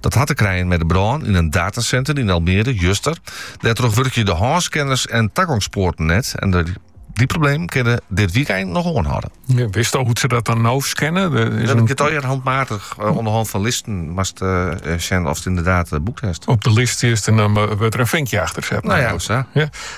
Dat hat te krijen mei de brân yn in datasenter yn Almere, juster. Dêrtroch wurkje de hânscanners en tagongspoarten net. En dy problemen kinne dit wykein noch oanhâlde. Ja, witst al hoe't se dat dan no scanne? Der is in... je handmatig uh, eh, oan 'e hân fan listen moatst sjen oft yndied uh, boekt hast. Op de list is en dan wurdt der in finkje achter set. No ja, sa. Ja.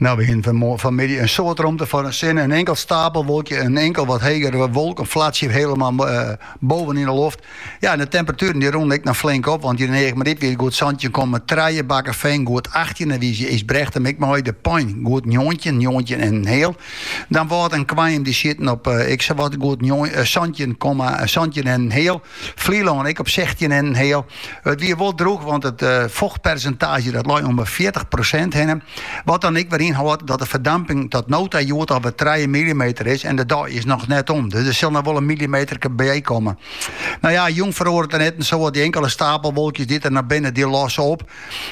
No we hienen fanmiddei in soad romte foar de sinne, in inkeld stapelwolkje, in inkeld wat hegere wolk, in flatsje hielendal boven yn de loft. Ja, en de temperatueren dy rûnen ek noch flink op, want hjir yn Eagmaryp wie it goed santjin komma trije, Bakkefean goed achttjin, en wize Ysbrechtum ek mei, De Pein goed njoggentjin, njoggentjin en in heal, Damwâld en Koarnjum dy sieten op ek sawat goed santjin komma, santjin en in heal. Flylân ek op sechstjin en in heal. It wie wol droech, want it eh, fochtpersintaazje dat lei om de fjirtich prosint hinne. Wat dan ek wer ynhâldt dat de ferdamping tot no ta hjoed alwer trije millimeter is en de dei is noch net om. Dus der sil noch wol in millimeterke by komme. No ja, jûn feroaret der net in soad, dy inkele stapelwolkjes dy't er noch binne, dy losse op.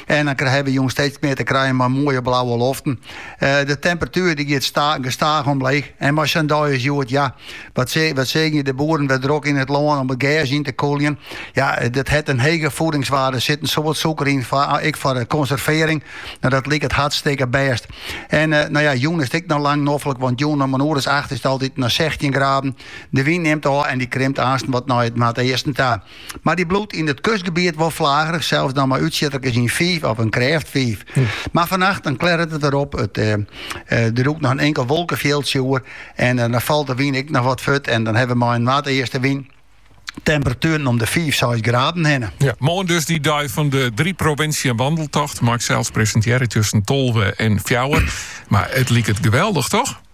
En dan hawwe we jûn steeds mear te krijen mei moaie blauwe loften. Eh, de temperatuer dy giet sta, gestaach omleech. En mei sa'n dei as hjoed, ja, Wat, se, wat seagen je de boeren wer drok yn it lân om it gers yn te kûljen. Ja, dat hat in hege voedingswaarde. Sit in soad sûker yn, foar, ah, ek foar konservearring. No, dat liket hartstikke bêst. En uh, no ja, jûn is it ek noch lang noflik, want jûn om in oer as acht is it altyd noch 16 graden. De wyn nimt ôf en dy krimpt aansten wat nei it, nei it easten ta. Mar dy bliuwt yn it kustgebiet wol flagerich, sels dan mei útsjitterkes, in fiif of in krêft fiif. Mar fannacht dan klearret it wer op, it, eh, eh, der lûkt noch in inkel wolkefjildsje oer en eh, dan falt de wyn ek noch wat furt en dan hawwe we mei in noardeastewyn temperatueren om de fiif, seis graden hinne. Ja, moarn dus dy dei fan de Drie Provinciën Wandeltocht. Mei ik sels presintearje tusken tolve en fjouwer. Mar it liket geweldig, toch?